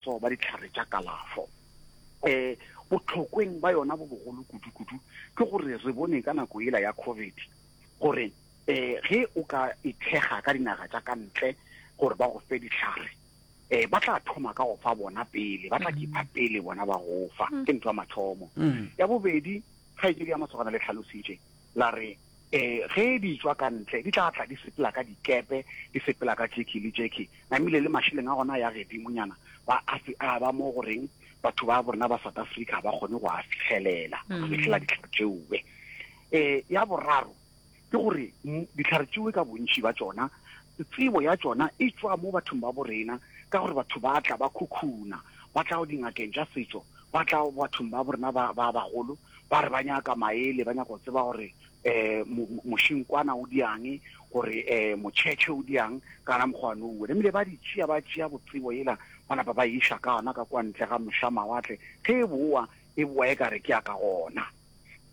tso ba dihlare tša kalafo. Um botlhokweng ba yona bo bogolo kudu-kudu ke gore re bone ka nako ela ya COVID gore um ge o ka ithekga ka dinaga tša ka ntle gore ba go fe dihlare eh ba tla thoma ka go fa bona pele ba tla kipa pele bona ba go fa ke ntho ya mathomo ya bobedi ga e ke ya masogana le tlhalositše la re Ee, ge di tšwa ka ntle, di tla tla di sepela ka dikepe, di sepela ka tšekhi le tšekhi, namile le mašeleng a gona a ya gedimonyana, ba a se a ba mo go reng batho ba borena ba South Africa ga ba kgone go a fihelela, go mm. fihlela ditlhare tšeoe. Ee, ya boraro, ke gore ditlhare tšeoe ka bontši ba tšona, tsebo ya tšona e tšwa mo bathong ba borena, ka gore batho ba tla ba khukhuna, ba tla go dingakeng tša setšo, ba tla bathong ba borena ba bagolo, ba re ba nyaka maele, ba nyaka go tseba gore um mošinkwana o diang, gore um motšhetšhe o diang, kana mokgwane o wena. Ebile ba di tšea, ba tšea botsebo yela, ba napa ba iša ka yona ka kwa ntle ga mošamawatle, ge e bowa e bowa e ka re ke ya ka gona.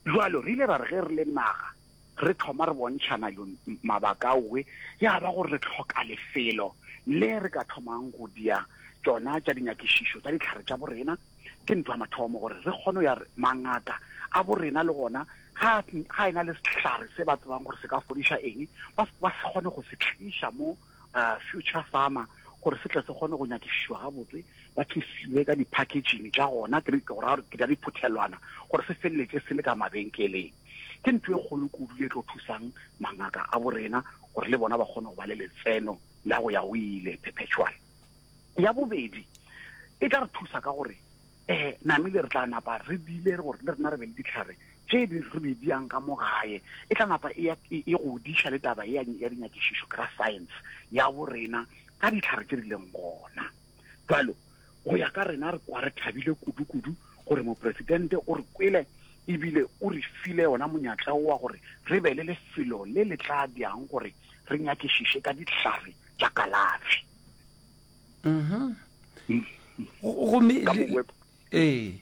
Jwalo re ile ra re ge re le naga, Re thoma re bontšhana yo mabaka aowe, ya ba gore re hloka lefelo le re ka thomang go dia tšona tša dinyakišišo tša dihlare tša borena. Ke ntwa mathomo gore re kgone go ya re mangaka a borena le gona ga ga ena le sehlare se ba tsebang gore se ka fodiša eng ba ba se kgone go se tliša mo Future Pharma gore se tle se kgone go nyakišišwa gabotse ba thusiwe ka di-packaging tša gona ke ke go ra gore ke tša diphuthelwana gore se feleletše se le ka mabenkeleng. Ke ntho e kgolo kudu ye e tlo thusang mangaka a bo rena gore le bona ba kgone go ba le letseno la go ya go ile, perpetual. Ya bobedi, e tla re thusa ka gore um namile re tla napa re bile gore le rena re be le dihlare tše di re be di yang ka mo gae. E tla napa e, e, e godiša le taba ya dinyakišišo, ka science ya bo rena ka dihlare tše di leng gona. Jalo Go ya ka rena, re kwa re thabile kudu-kudu gore Mopresidente o re kwele e bile o re file wona monyatla wo wa gore re be le lefelo le le tla diyang gore re nyakišiše ka dihlare tša kalafi. Gomme ee.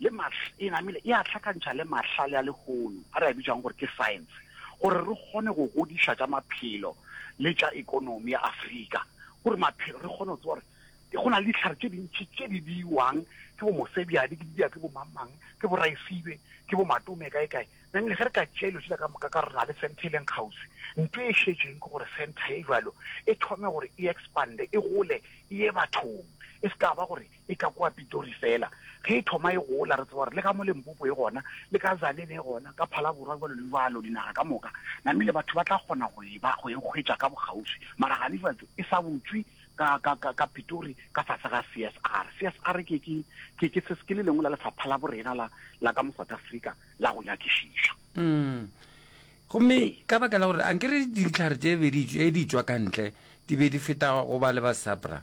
le Mars e namile e a hlakantšha le mahlale a lehono a re a bitšang gore ke science gore re kgone go godiša tša maphelo le tša ekonomi ya Afrika gore maphelo re kgone go tseba gore go na le dihlare tše dintši tše di biwang ke bo mosebjadi ke di biwa ke bo mamang ke bo raesibe ke bo matome kae kae nang le ge re ka tšea dilo tsela ka moka ka re na le center e leng kgauswi nto e šetšeng ke gore center e jalo e thome gore e expande e gole e ye bathong e se ka ba gore e ka kwa Pitori fela. Ge e thoma e gola, re tseba gore le ka mo Limpopo e gona, le ka Tzaneen e gona, ka Phalaborwa jalo le jalo, dinaga ka moka, namile batho ba tla kgona go e ba, go e hwetša ka bokgauswi. Mara ganefetša e sa butšwe ka, ka, ka, ka Pitori ka fase ga CSR. CSR ke, ke, ke, ke, se, ke le lengwe la lefapha la borena la, la ka mo South Africa la go nyakišiša. Mm. Gomme ka baka la gore a nkere dintlhare tše bedi tše di tšwa ka ntle di be di feta go ba le ba SAPRA.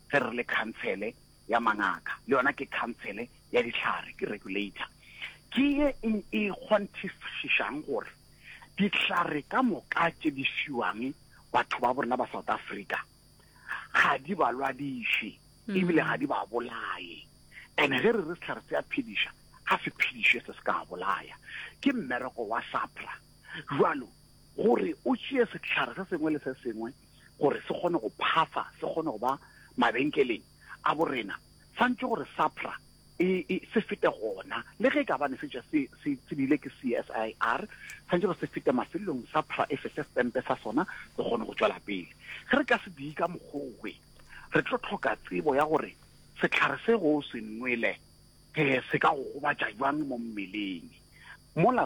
ge re le khansele ya mangaka, le yona ke khansele ya dihlare, ke regulator, ke ye e e kgonthišišang gore dihlare ka moka tše di fiwang batho ba borena ba South Africa ga di ba lwadiše ebile ga di ba bolaye. And ge re re sehlare se a phediša, ga se phediše se se ka bolaya. Ke mmereko wa SAPRA jwalo gore o tšee sehlare se sengwe le se sengwe gore se kgone go phasa, se kgone go ba mabenkeleng a borena, santše gore SAPRA e, e se fete gona. Le ge e ka bane se tša se, se tsebile ke CSIR, santše gore se fete mafelelong, SAPRA e fe se stempe sa sona, se kgone go tšwela pele. Ge re ka se diyi ka mokgogwe, re tlo tlhoka tsebo ya gore sehlare se go se nwele eh, se ka go gobatša jwang mo mmeleng. Mola